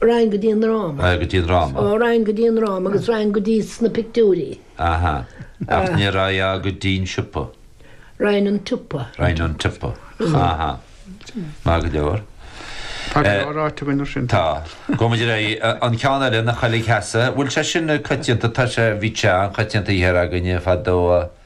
Raghainn go dtí an ndráma. Raghainn go dtí an ndráma. Ó, raghainn go dtí an ndráma agus raghainn go dtí sna pictiúirí. Aha. Ach ní raghfá go dtí an siopa. Raghainn 'on tsiopa. Raghainn 'on tsiopa. Aha. Maith go leor. Tá go leor ráite againn mar sin. Tá. Go maidir le an ceann eile, na coiligh theasa, bhfuil sé sin coitianta, tá sé, bhíodh sé an-choitianta thiar againne fadó.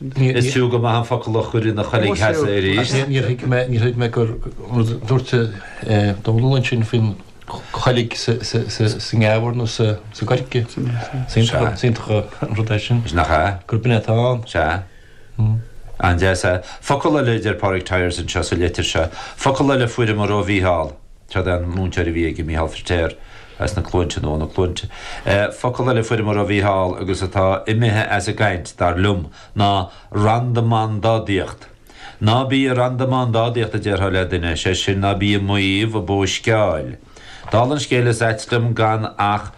Is fiú go maith an focal a chur ina choiligh theasa arís. Níor thuig mé, níor thuig mé gur, nuair a dúirt Dónall ansin faoin choiligh sa ngeamhar nó sa gcoirce, is iontach an rud é sin. Is nach ea. Gurb in é atá ann. Sea. An-deas. Focal eile a deir Pádraig Tyers anseo sa litir seo, focal eile a fuaireamar ó Mhícheál. Cad é an múinteoir a bhí aige, Micheál Firtéar as na Cluainte, nó ó na Cluainte? Focal eile a fuaireamar ó Mhicheál agus atá imithe as an gcaint, dar liom, ná randamándádaíocht. Ná bí ag randamándádaíocht, a déarfá le duine, is é sin, ná bí ag maíomh, ag bóisceáil. Dála an scéil, is ait liom gan ach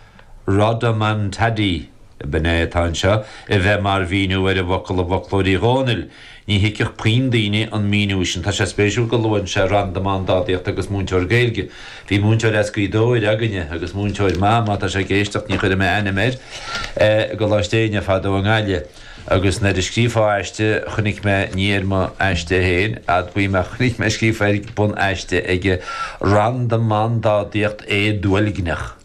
'Rodomontade', b'in é atá anseo, a bheith mar mhíniú ar an bhfocal i bhfoclóir Uí Dhónaill. Ní thuigfeadh puinn daoine an míniú sin. Tá sé spéisiúil go luann sé randamándádaíocht agus múinteoir Gaeilge. Bhí múinteoir as Gaoth Dobhair againne agus múinteoir maith, má tá sé ag éisteacht, ní chuirfidh mé ainm air, i gColáiste Éinne fadó i nGaillimh. Agus nuair a scríofá aiste chonaic mé, ní ar mo aiste féin, admhaím, ach chonaic mé scríofa ar bhun aiste aige 'Randamándádaíocht éaduilgneach'.